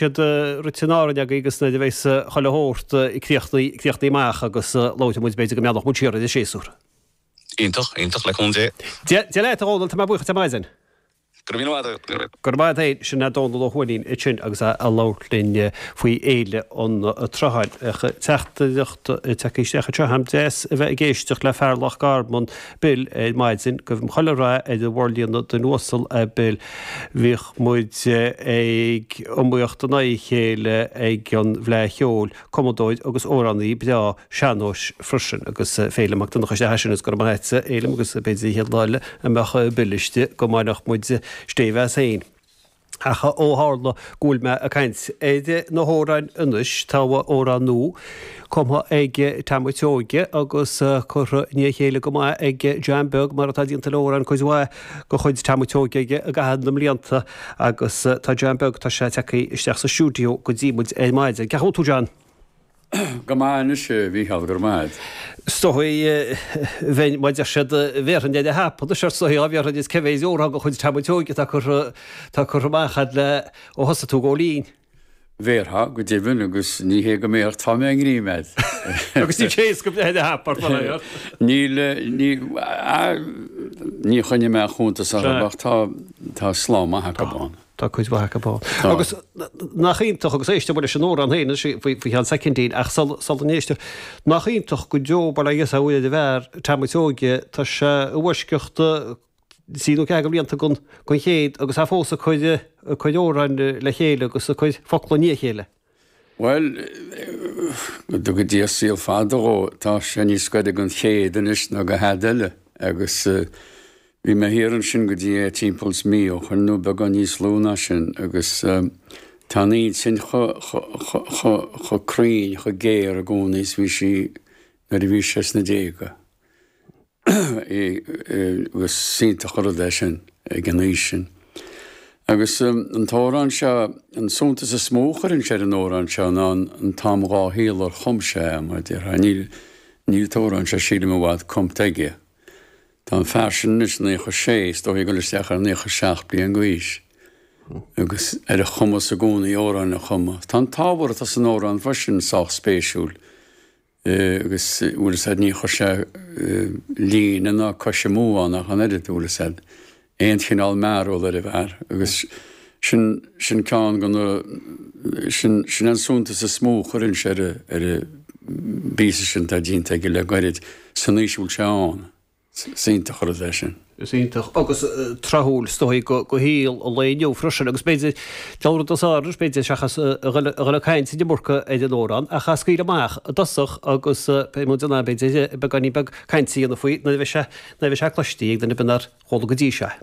siad rite in Árainn againn agus nuair a bheas chuile shórt críochnaithe amach agus labhróidh muid, b'fhéidir, go meallfadh muid siar ar an séasúr. Iontach, iontach, le cúnamh Dé. Dia leat, a Dhomhnaill, tá mé buíoch díot ar maidin. Go raibh míle maith agat, go raibh míle. Go raibh maith agat féin. Sin é Domhnall Ó hUaithnín ansin agus é ag labhairt linn faoi Fhéile an tSrutháin. Teachtaireacht tagtha isteach anseo agam, deas a bheith ag éisteacht le fear Loch Garman. Bill ar maidin, guím chuile rath ar an bhforlíonadh duine uasal é Bill. Bhíodh muid ag iomaíocht in aghaidh a chéile ag an bhFleadh Cheoil, cumadóir agus amhránaí breá sean-nóis freisin, agus Féilim Mac Donncha istigh ansin, is go raibh maith a't, a Fhéilim, agus b'fhéidir an chéad lá eile a mbeadh Bill istigh, go mbainfeadh muid stéibh as fhéin. Ach ó tharla go bhfuil mé ag caint ar na hamhráin anois, tá amhrán nua, cumtha ag Tom a' tSeoighe agus curtha i ndiaidh a chéile go maith ag John Beag, mar atá déanta le hamhráin cuid mhaith de chuid Tom a' tSeoighe i gcaitheamh na mblianta, agus tá John Beag, tá sé tagtha isteach sa stiúideo go dtí muid ar maidin. Cén chaoi a bhfuil tú, John? Go maith anois, a Mhícheáil, go raibh maith agat. Stopfaidh bheinn má deir siad bhéarfainn é le hap. Anois, arsa Aodh, bhéarfainn is cé mhéad amhrán de chuid Tom a' tSeoighe atá curtha, atá curtha amach a'd le ó thosaigh tú ag gabháil fhoinn? Mar a déarfá, go deimhin, agus ní hé go mbéarfadh, tá mé i ngreim fhad. Agus ní fhéadfadh go mbeinn le hap, arsa Aodh. Níl, níl a fhios a'm, níor choinnigh mé cuntas orthu ach tá, tá slám maith acu ann. Tá cuid mhaith acu ann. Agus nach iontach, agus éistfidh muid leis an amhrán féin faoi cheann soicindín, ach sula n-éistfidh, nach iontach go deo bail ó Dhia is ó Mhuire ar an bhfear, Tom a' tSeoighe, tá sé i bhfoisceacht trí nó ceathair de bhlianta den chéad agus é fós ag cur a chuid amhrán le chéile agus a chuid focla i ndiaidh a chéile. Bhuel, go dtuga Dia saol fada dhó, tá sé níos gaire don chéad anois ná do thada eile, agus bhí mé thiar ansin go dtí é timpeall is mí ó shoin, nó beagán níos lú ná sin, agus tá an intinn chomh cruinn, chomh géar i gcónaí is bhí sí nuair a bhí sé sna déaga. agus is iontach an rud é sin ag an aois sin. Agus an t-amhrán seo, an suntas is mó a chuirfinnse ar an amhrán seo ná an t-am dhá shaol ar chum sé é, mar a déarfá. Níl an t-amhrán seo, sílim, i bhfad cumtha aige. Tá an fear sin anois naocha sé, is dóigh ag dul isteach ar naocha seacht bliain d'aois, agus ar a chumas i gcónaí amhráin a chumadh. Tá an t-ábhar atá san amhrán freisin sách spéisiúil. agus bhfuil a fhios a'd ní chuir sé líne ná cois amú ann ach an oiread, bhfuil a fhios a'd aon chineál mearbhall ar an bhfear agus sin sin ceann de na sin sin an suntas is mó a chuirfinnse ar an bpíosa sin atá déanta aige le gairid san aois a bhfuil sé ann. Is iontach an rud é sin. Is iontach agus tráthúil is dóigh go shaol an lae inniu freisin agus b'fhéidir, ceann rud as áireamh, b'fhéidir, seachas a dhul ag caint an iomarca ar an Órán, ach a scaoileadh amach i dtosach agus pé modh den am, b'fhéidir, beagáinín beag cainte a dhéanamh faoi nuair a bheidh sé, nuair a bheidh sé cloistí ag duine ar bith nár chuala go dtí seo é.